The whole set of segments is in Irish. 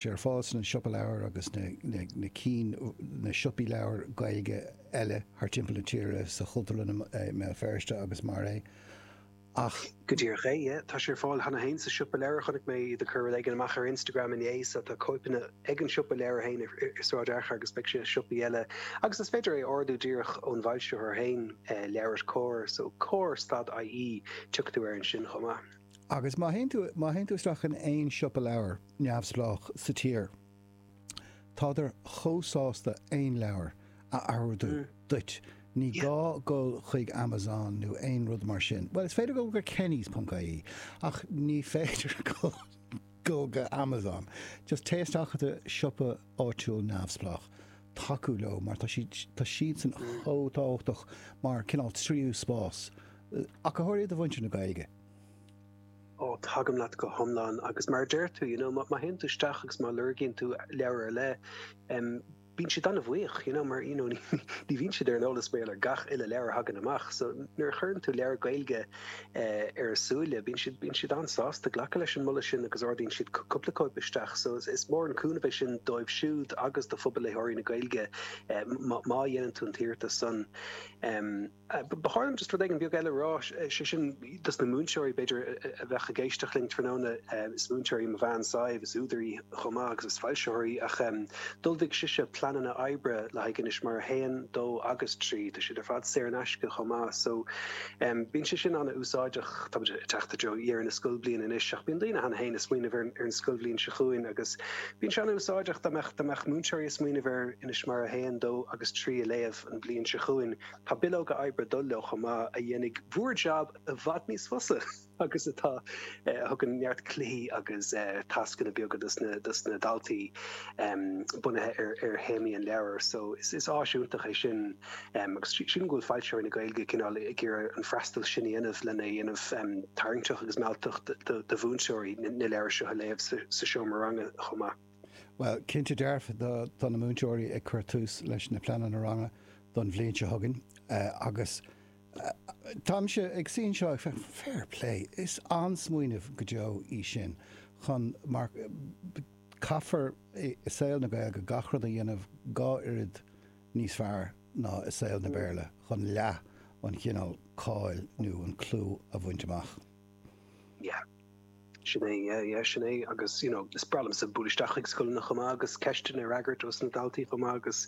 sé ar fáil sna siopa leabhar agus na cinn na siopaí leabhar Gaeilge eile thar timpeall na tíre, sa Chultúrlann i mBéal Feirste agus mar é. Ach. go díreach é. Yeah, tá sé ar fáil cheana féin sa siopa leabhar. Chonaic mé iad ag cur rud éigin amach ar Instagram inné so tá cóipeanna ag an siopa leabhar féin i Sráid Fhearchair agus beidh sé i siopaí eile agus is féidir é a ordú díreach ón bhfoilsitheoir féin, Leabhair Comhar, so comhar stad IE, tiocfaidh tú air ansin chomh maith. Agus má théann tú isteach in aon siopa leabhar. neamhspleách sa tír. Tá siad thar a bheith sásta aon leabhar a ordú duit, ní gá dul chuig Amazon nó aon rud mar sin. Bhuel, is féidir dul go Kennys ponc ie, ach ní féidir dul go Amazon. Just téigh isteach i do siopa áitiúil neamhspleách, tacú leo mar tá siad, tá siadsan chomh tábhachtach mar cineál tríú spás. Ach go háirithe do mhuintir na Gaeilge. Ó, tagaim leat go hiomlán agus mar a deir tú, you know, má théann tú isteach agus má lorgaíonn tú leabhar ar leith, em, bíonn siad an-bhuíoch, you know, mar you know, ní bhíonn siad ar an eolas b'fhéidir ar gach uile leabhar a thagann amach. So nuair a chuireann tú leabhar Gaeilge eh, ar a súile, bíonn siad bíonn siad an-sásta glacadh leis an moladh sin agus ordaíonn siad cú- cúpla cóip isteach. So is, is mór an cúnamh é sin dóibh siúd agus do phobal léitheoirí na Gaeilge eh, má má dhéanann tú an t-iarratas san. Em, Ba chóir dom just rud éigin beag eile a rá, sé sin dos na múinteoirí b'fhéidir a bheadh ag éisteacht linn tráthnóna, is múinteoir í mo bhean Sadhbh, is údar í chomh maith agus is foilsitheoir í ach d'ullmhaigh sise pleananna oibre le haghaidh Inis Mara 1, 2 agus 3, tá siad ar fad saor in aisce chomh maith so bíonn sé sin an-úsáideach. Táimid ag teacht i dtreo dheireadh na scoilbhliana anois ach bíonn daoine cheana féin ag smaoineamh ar an scoilbhliain seo chugainn agus bíonn sé an-úsáideach dá mbeadh múinteoirí ag smaoineamh ar Inis Mara 1, 2 agus 3 a léamh an bhliain seo chugainn. Tá bileoga oibre ag dul leo chomh maith a dhéanfaidh bhur jab i bhfad níos fusa agus atá, a thugann neart cluichí agus tascanna beaga dos na daltaí bunaithe ar théamaí an leabhair. So is áis iontach é sin agus sílim go bhfuil foilsitheoirí na Gaeilge cineál ag iarraidh an freastal sin a dhéanamh lena dhéanamh tarraingteach agus mealltach do mhúinteoirí na leabhair seo a léamh sa seomra ranga chomh maith. Bhuel, cinnte dearfa, tá na múinteoirí ag cur tús leis na pleananna ranga don bhliain seo chugainn agus táimse ag suí anseo ag rá fair play, is an-smaoineamh go deo í sin chun, mar caithfear i saol na Gaeilge gach rud a dhéanamh dhá oiread níos fearr ná i saol na Béarla chun leath an chineál cáil nó an clú a bhaint amach. Yeah. Sin é, yeah, yeah, sin é. Agus, you know, is breá liomsa bualadh isteach chuig scoileanna chomh maith agus ceisteanna a fhreagairt ó sna daltaí chomh maith agus,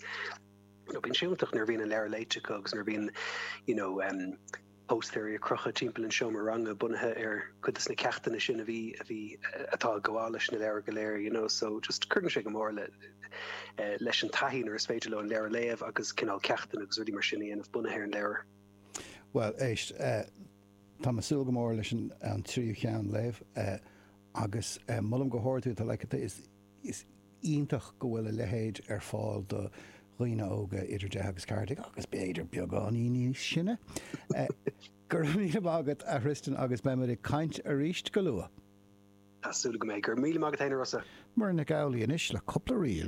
you know, bíonn sé iontach nuair a bhíonn an leabhar léite acu agus nuair a bhíonn, you know, um, póstaeirí ag crochadh timpeall an seomra ranga bunaithe ar cuid de sna ceachtanna sin a bhí, a bhí, atá ag gabháil leis na leabhair go léir, you know, so just cuireann sé go mór le, eh, leis an taithí nuair is féidir leo an leabhar a léamh agus cineál ceachtanna agus rudaí mar sin a dhéanamh bunaithe ar an leabhar. Bhuel, éist, eh, Tá mé ag súil go mór leis an tríú cheann léamh agus molaim go hard tú, tá like, is iontach go bhfuil a leithéid ar fáil do dhaoine óga idir deich agus ceathair déag agus b'fhéidir beagáinín níos sine. Go raibh míle maith agat a Thristan agus beimid ag caint arís go luath. Tá súil agam go mbeidh. Go raibh míle maith agat féin a Rossa. Muireann Nic Amhlaoibh anois le cúpla ríl.